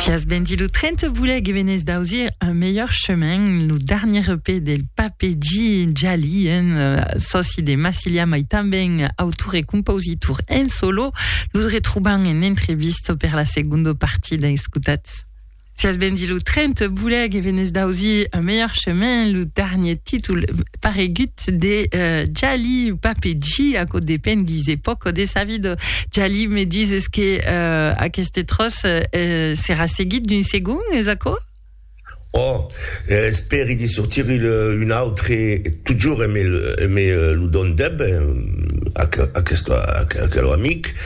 Fias Bendy lo 30 voulèc e venè's d'ausir un melhor chemin lo darnier EP del Pape G Jali en euh, sòci de Massilia mai tanben autor e compositor en solo los retrobam en entrevista per la segunda partida escutatz Fias Bendy lo 30 voulèc e venè's d'ausir un melhor chemin lo darnier títol paregut de Jali o Papeji, aquò depend, dise pòc de sa vida. Jali, me dises que aqueste tròç serà seguit d'un segon, es aquò? Oh, espèri de sortir un autre, totjorn me lo dòn deb aquel amic.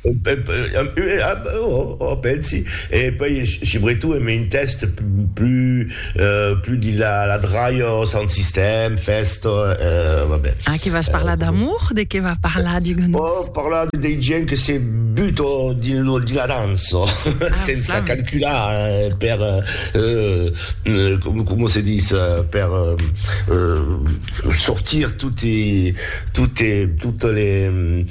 Ò, pensi, e puèi subretot en un tèxt plus de la dralha, sound system, fèsta, va ben. Ah, que vas parlar d'amour? De qué va parlar, digue-nos? Ò, parlar de dei gents que se buta dins la dança, sensa calcular per, coma se ditz, per sortir totes les...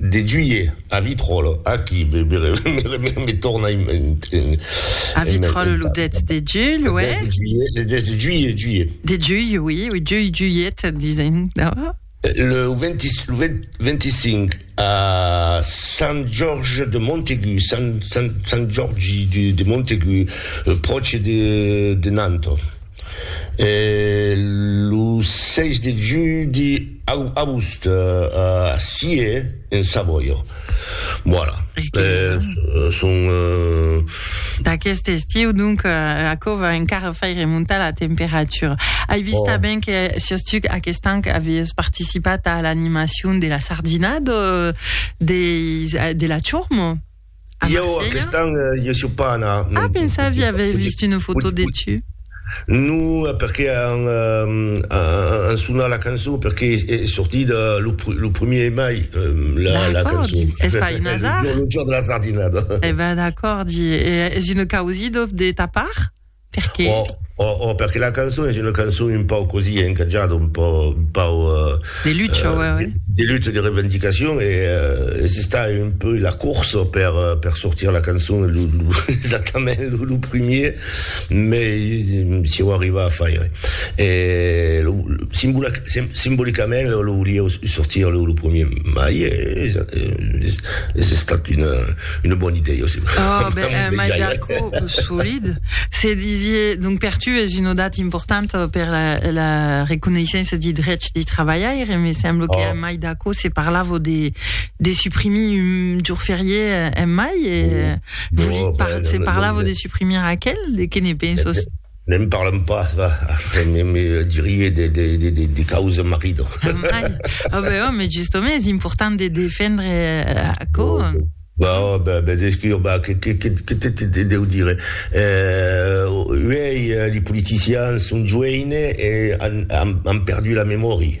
De Juillet a Vitròl, aquí me torna en mentar. A Vitròl lo 10 de Juilh, uè? Lo 10 de Juilh, Juilh. De Juilh, oui, oui, Juilh, Juilhet, disen, no? Lo 25 a Sant Jorge de Montaigu, Sant Jorgi de Montaigu, pròche de Nantes. E lo 6 de judi au agost a Scie, en Savoia. Voilà. Son... D'aqueste estiu, donc, aquò va encara fai remontar la temperatura. Ai vist tanben que siós tu aquest an aviás participat a l'animacion de la sardina de la Chormo. A Marselha? Jo, aquest an, jo sò pas anar. Ah, pensavia aver vist una foto de tu. Non, perqué an, an sonat la cançon, perqué es sortit lo primier de mai, la cançon. D'acòrdi, es pas un azar. Lo jorn de la sardinada. E ben, d'acòrdi, e es una causidòf de ta part? Perqué? Òh, òh, òh, perqué la cançon es una cançon un pauc cosí, eh, encatjada, un pauc, un pauc... Euh, de lutte, euh, ouais, ouais. De, de lutte, de revendicacion, e euh, es estat un peu la course per, euh, per sortir la cançon, lo, lo, exactament lo, lo primier, mais si ho arriva a faire. E lo, lo, simbolic, sim, simbolicament lo, lo volia sortir lo, lo premier mai, e es, es, es estat una... Una bona idèia, aussi. Oh, ben, un mai d'acò solid. Se disié, donc, per tu es una data importanta per la, la reconeissença de drets de trabalhaire, me sembla oh. que un mai d'acò se parlava de, de suprimir un jour férié un mai, e oh. no, ben, se parlava no, no, de suprimir aquel, de que ne penses? Ne'n parlam pas, va, me dirie de causa marido. Mai, oh ben oh, mais justement es important de defendre aquò. Ben oh, ben, ben descur, ben, que, que, que, que te, te, te deu dire? Eh, uèi li politicians son joeines e an, an, an perdu la memòria.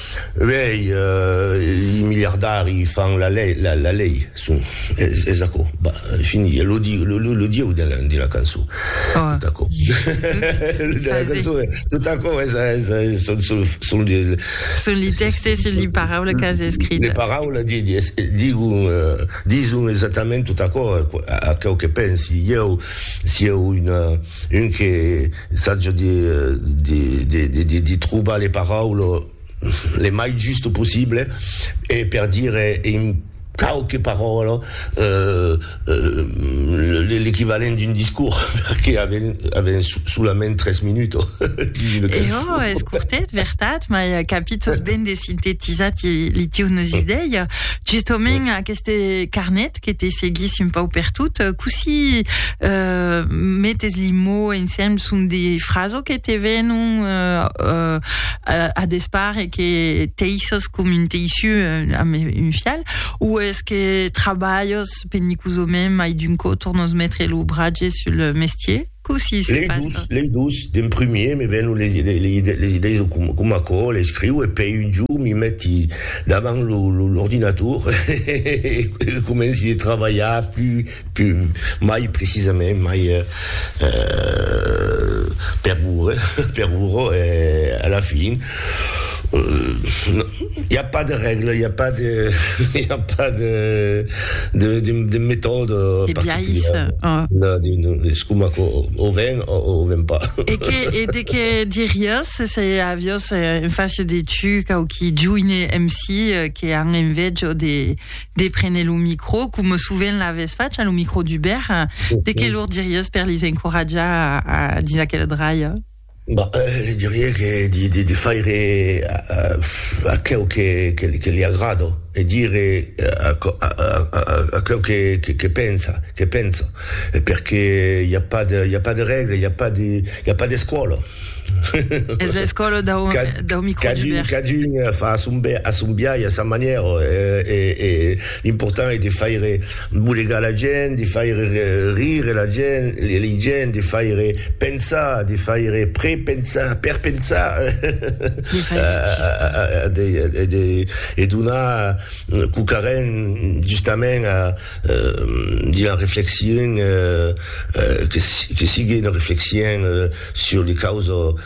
Uèi, i miliardari fan la lei, la, la lei, son, es, es aquò, bah, fini, e lo diu, lo, lo, lo dieu de la, de la cançó, oh. tot aquò, lo de la cançó, tot aquò, es, es, es, son, son, son de... Son li texte, son li paraula que has escrit. Le paraula, di, di, es, digu, uh, dison exactament tot aquò, aquò que pensi, ieu, si eu una... Un que saja de trobar le paraules le mai juste possible e per dire en quauque parole l'equivalent d'un discours, perque avèm solament tres minuts. E jo, es cortet, vertat, mai capi tosben de sintetizar li tieus idèias. Justament, aqueste carnet, agradat que te seguissi un pauc per tot. Cossí euh, metes li mots ensemble? Son de frases que te venon euh, euh, a, a despart e que teisses com un teissiu euh, amb un fial? Ou es que trabalhes penicosament mai d'un còp tornos metre lo bratge sul mestier? Cossí se passa? Lei dus, lei dus, d'en primier me vèn les les idèis de com com aquò l'escriu e pei un jorn mi meti davant lo l'ordinator e comenci de trabalhar plus plus mai precisament mai per ora per ora e a la fin I a pas de règla, i a pas de, i a pas de, de, de, de metòde particulièr. No, no, es coma que o ven o o ven pas. E que, e de que diriás se aviós en fach de tu quauqui joine MC que an envejo de, de prene lo micro, coma sovent l'avès fach a lo micro d'Hubert, de que lor diriás per lis encoratjar a, a dins aquela dralha? Bah, li dirie que de faire aqueu que li agrada e dire aqueu que pensa, que penso, perque i a pas de, i a pas de règle, i a pas de, i a pas d'escòla. Es l'escòla dau microlibèr. Cadun fa a son biais, a sa manièra, e l'important es de faire. Bolegar la gent, de faire rire la gent, les gens, de faire pensar, de faire prepensar, perpensar, de donar cocarren justament a d'una reflexion que sigue una reflexion sur les causes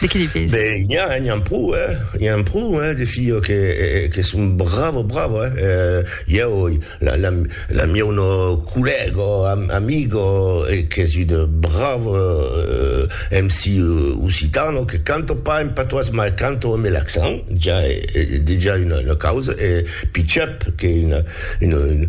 De qui li pese? Ben, n'i a, n'i an pro, hè. I an pro, hè, de filhos que, que son bravo, bravo, hè. Ieu, la, la, la mieu no collègo, amigo, qu'es un bravo MC occitano, que canto pas en patois, mas canto amb l'accent, ja, e, dejà una, una causa, e Pichep, qu'es un, un,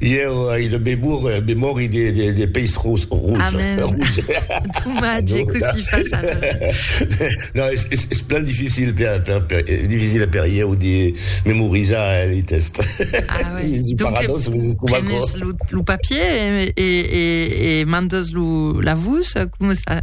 Ieu ai una memòria de peish rouge. Amen! Domatge que si fas ara! Non, es plan dificil per ieu de memorizar lei test. Ah ouais! Donc prenes lo papier e mandes lo la vos? Coma ça?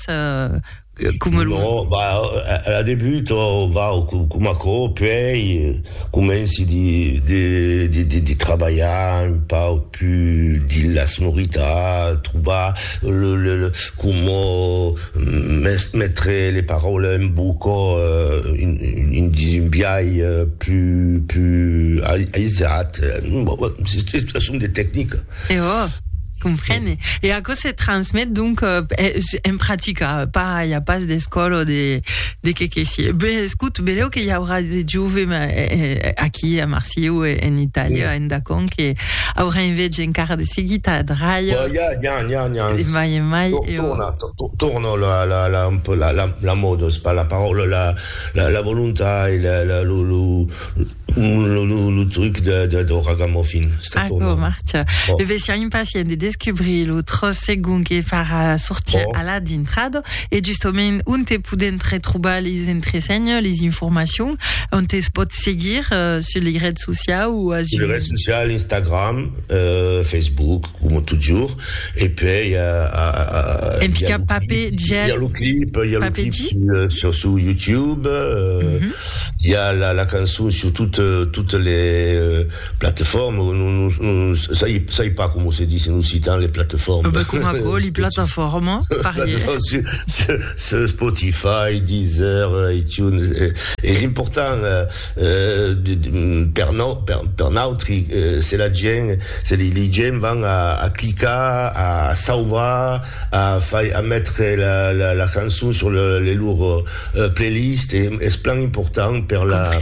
Ras, eh, coma lo... No, va, a la debut, oh, va, coma aquò, puèi comenci de, de, de, de, de trabalhar un pauc pus dins la sonoritat, trobar le, le, le coma mes, metre le paraules en boca, eh, in, dins un biais pus, pus aisat, bon, bon, son de tecnicas. E ò, comprene. E aquò se transmet donc en practica, pas i a pas d'escòla o de de qué que sié. Ben, escout, belèu que i aurà de jove aquí a Marsieu e en Itàlia, en Dacon, que aurà enveja encara de seguir ta dralha. Ò, ja, ja, ja, ja. De mai en mai, e ò. Torna, torna la la la un peu la la la mòda, se pas la paròla, la la la volontat e la la lo lo. Lo truc dau ragamuffin. Aquò marcha. Lo vesian impacient de descubrir lo tròç segon que farà sortir Alà dintrado. E justament, onte podèm retrobar les entresenhas, les informacions? Onte es pòt seguir? Sus lei rets sociaus o as un. Sus lei rets sociaus, Instagram, Facebook. Coma totjorr, e puèi i a lo clip sur YouTube, i a la cançon sur totes les plateformes, non sai pas coma se dis en occitan, les plateformes. Ben coma aquò, li plataformas, parièr. Sur Spotify, Deezer, iTunes, es important. Per nautri, se la gent, se li gent van a clicar, a sauvar, a fai, a metre la cançon sur le lor playlist, es plan important per la,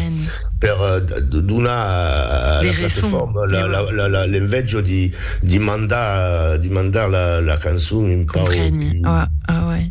per donar a la plateforma l'envejo di mandar, di mandar la cançon un pau.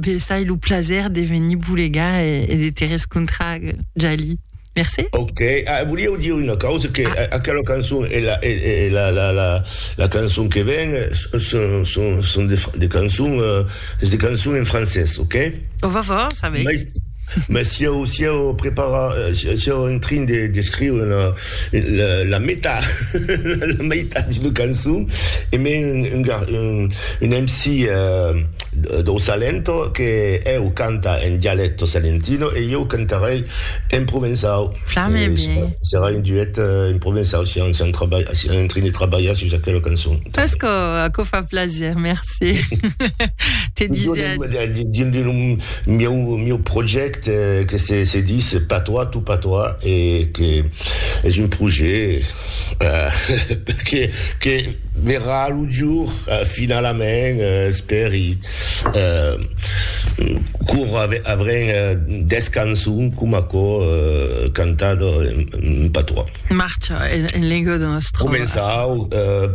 Vesai lo plaser de venir vos legar e de te rescontrar, Jalie. Mercé. Ok, ah, volieu dire una causa, que ah. aquela cançon e la, e, e la, la, la, la cançon que ven son, son, son de, de cançons, uh, de cançons en francès, ok? Au revoir, ça va. Mès si eu, si eu prepara, si eu en trin de, d'escriure la, la, la meta, la meitat d'una cançon, e me un, un, un, un MC eh, do Salento, que eu canta en dialecto salentino e eu cantarei en provençau. Flame e serà, serà un duet eh, en provençau, si eu, si eu, si eu en trin de trabalhar sus aquela cançon. Pesco, aquò fa plaser, merci. Sí. Te disais... Dins de meu projècte que se, se dis pas toi, tout pas toi, e que es un projet uh, que, que verrà lo jour uh, finalament, uh, espèri. Uh, cor avrem uh, des cançons com aquò uh, cantat en, en patois. Marcha en, en lengua de nostra. Començau... Uh,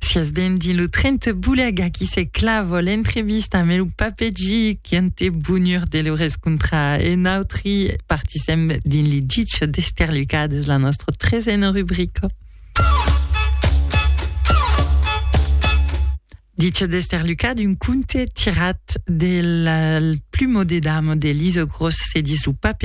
Sias ben dins lo tren te boulèc, aquí se clava l'entrevista amb lo papegi quant e bonur de lo rescontrar e nautri partisèm dins li ditge d'esterlucades la nostra tresena rubrica. Dice d'Esther Lucas d'un conte tirat del plumo de dame de Lise Grosse, se dit sous pape